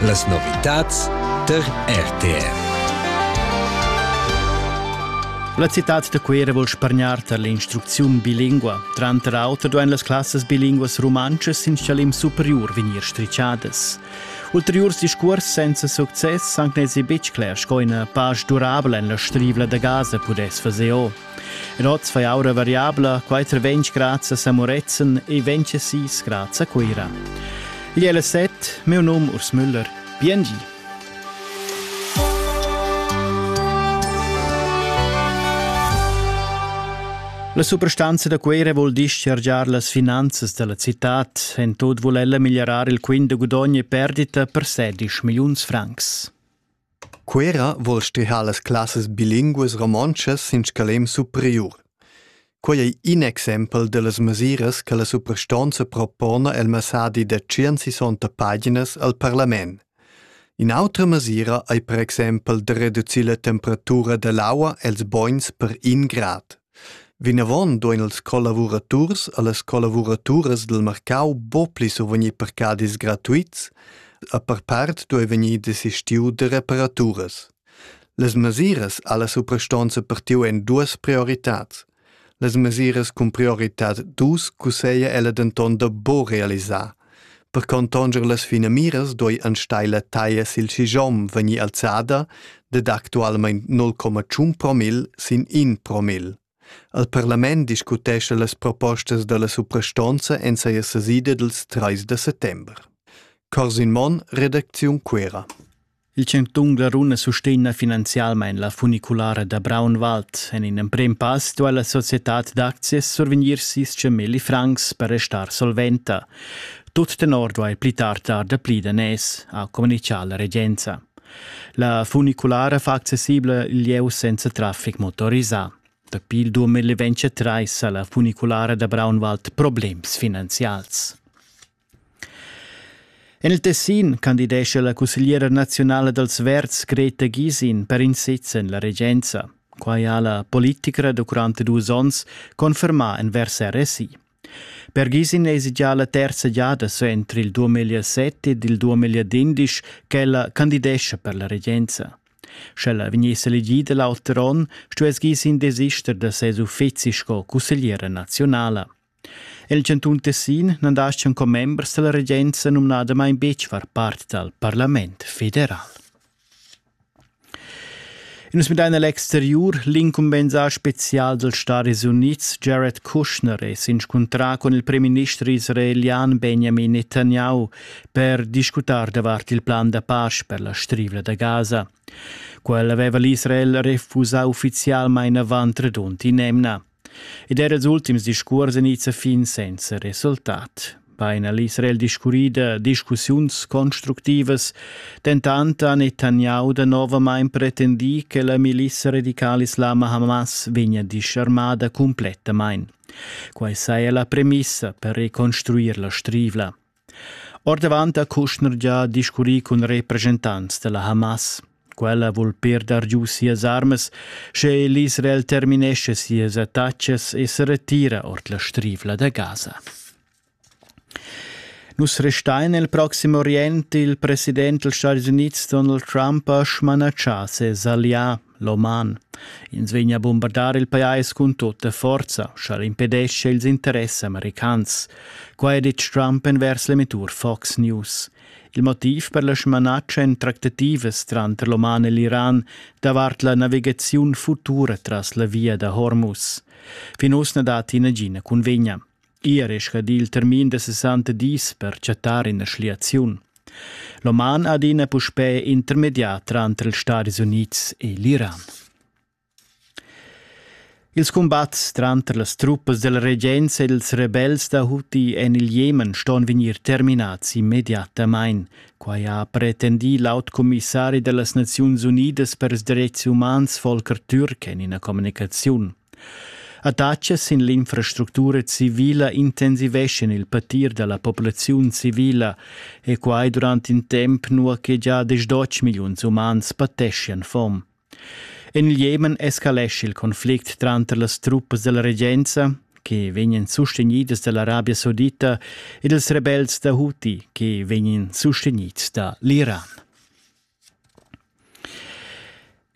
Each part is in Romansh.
Las novitads tar RTR. La citad da Cuera vul spargnar tar l'instrucziun bilingua. Tranter auter duain las classas bilinguas rumantschas sin chalim superiur vegnir strichadas. Ulteriurs discurs senza success han nezi betg cler sco ina pasch durabla en la strivla da Gaza pudess fazer o. En oz fai aura variabla, quai tra 20 grads a Samorezen e 26 grads a Cuira. Igl è la set, meu num Urs Müller. Biengi! La suprastanza da Cuira vuol dischargiar las finanzas della cittad, en tot vuol ella migliorar il quint de gudogn e perdita per 16 milliuns francs. Cuera vuol stüdchar las classas bilinguas romontschas in scalem superiur. Quei ei in exempel dallas mesiras che la suprastonza propona el messadi da tschient-sessanta paginas al parlament. In'autra mesira ei per exempel da reducir la temperatura dall'aua els bogns per in grad. Vinavon duein ils collavuraturs e las collavuraturas dil marcau buca pli survegnir parcadis gratuits, a per part duei vegnir desistiu da reparaturas. Las mesiras alla suprastonza partiu en duas prioritads. Las mesiras cun prioritad dus cusseglia ella denton da buca realisar, Per contonger las finamiras duei enstagl la taglia sil schigiom vegnir alzada dad actualmein 0,1 promil sin in promil. El parlament discutescha las propostas dalla suprastonza en seia sesida dils 3 da settember. Corsin Monn, redacziun Cuera. Il chantun Glaruna sustegna finanzialmain la funiculara da Braunwald. En in emprem pass duai la societad d'aczias survegnir sis milli francs per restar solventa. Tut tenor duai pli tard dar dapli daners, ha communitgà la regenza. La funiculara fa accessibla il lieu senza traffic motorisà. Dapi il 2023 sa la funiculara da Braunwald problems finanzials. En il Tessin candidescha la cussegliera naziunala dals Verds Greta Gysin per in sez en la regenza. Quai ha la politicra durant dus onns confermà envers RSI. Per Gysin èsi già la terza giada suenter il 2007 ed il 2011 ch'ella candidescha per la regenza. Sch'ella vegniss elegida l'auter onn, stuess Gysin desister da ses uffizi sco cussegliera naziunala. El chantun Tessin nan daschan commembers dalla regenza numnadamain betg far part dal parlament federal. Nus midain all'exteriur, l'incumbensà spezial dals Stadis Unids Jared Kushner è s'inscuntrà con il premierminister israelian Benjamin Netanyahu per discutar davart il plan da pace per la strivla da Gaza. Quel aveva l'Israel refusà uffizialmain avant redund in'emna. Ed era ils ultims discuors ein its a fin senza resultat. Bein ha l'Israel discurri da discussiuns constructivas, dentant ha Netanyahu danovamain pretendì che la milissa radicala islama Hamas vegnia disarmada cumplettamain. Quai saja la premissa per reconstruir la strivla. Ordavant ha Kushner gia discurrì cun represchentants da la Hamas. Quella vul perder giu sias armas, sche l'Israel terminesce sias attacas e se retira ord la strivla da Gaza. Nus restain nel Proximo Orient. Il president dels Stati Units Donald Trump ha smanatschà ses allià L'oman. Ins vegn a bombardar il pajais cun tutta forza, sch'el impedesce ils interess americans. Qua è ditg Trump envers l'emettur Fox News. Il motiv per la smanatscha en tractativas tranter l'Oman e l'Iran davart la navigaziun futura tras la via da Hormuz. Fin uss na datti nagina cunvegna. Ier è scadì il termin da 60 dis per chattar ina schliaziun. L'oman adina puspè intermediat tranter ils Stadis Unids e l'Iran. Ils cumbats tranter las truppas della regenza ed ils rebels da Houthi en il Jemen ston vegnir terminads immediatamain. Quai ha pretendì l'aut commissari da las Naziuns Unidas per ils dretgs umans Volker Türk en ina communicaziun. Adatscha sin l'infrastructura civila intensiveschan il patir dalla populaziun civila e quai durant in temp nua che gia desch dotg milliuns umans pateschian fom. En il Jemen escalescha il conflict tranter las truppas della regenza, che vegnan sustenidas dall'Arabia Saudita, e dels rebels da Houthi, che vegnan sustenids da l'Iran.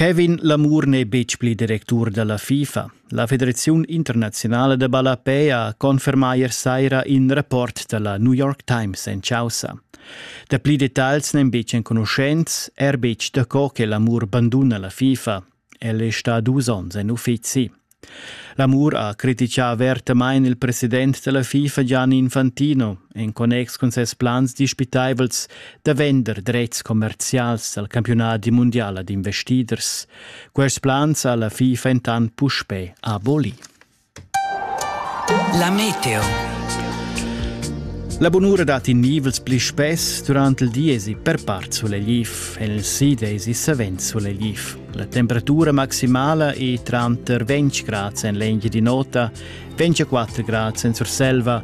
Kevin Lamour n'è betg pli directur da la FIFA. La federaziun internaziunala da ballapei ha confermà ier saira in rapport da la New York Times en chaussa. Dapli detagls n'èn betg enconuschents, er betg daco che Lamour banduna la FIFA. El è stà dus onns en uffizi. L'amur ha criticà avertamain il president della FIFA Gianni Infantino en connex cun ses plans dispitaivels da vender drets commerzials al campionati mundial ad investiders. Quest plans ha la FIFA entant puspè abolì. La meteo. La bunura dat in nivels pli spess durant il di esi per part sulegliv e il sid esi savens sulegliv. La temperatura maximala è tranter 20 grads en l'engia di nota, 24 grads en Surselva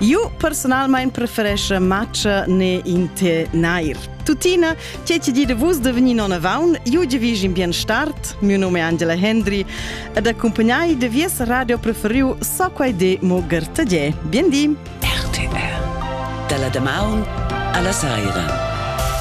Io personalmain preferesce matcha ne in te nair. Tutina, che ti di de vus de venir non avaun, io di vis in bien start, mio nome è Angela Hendry, ed accompagnai de vies radio preferiu so quai de mo Gertadie. Bien di! RTR. Dalla damaun alla saira.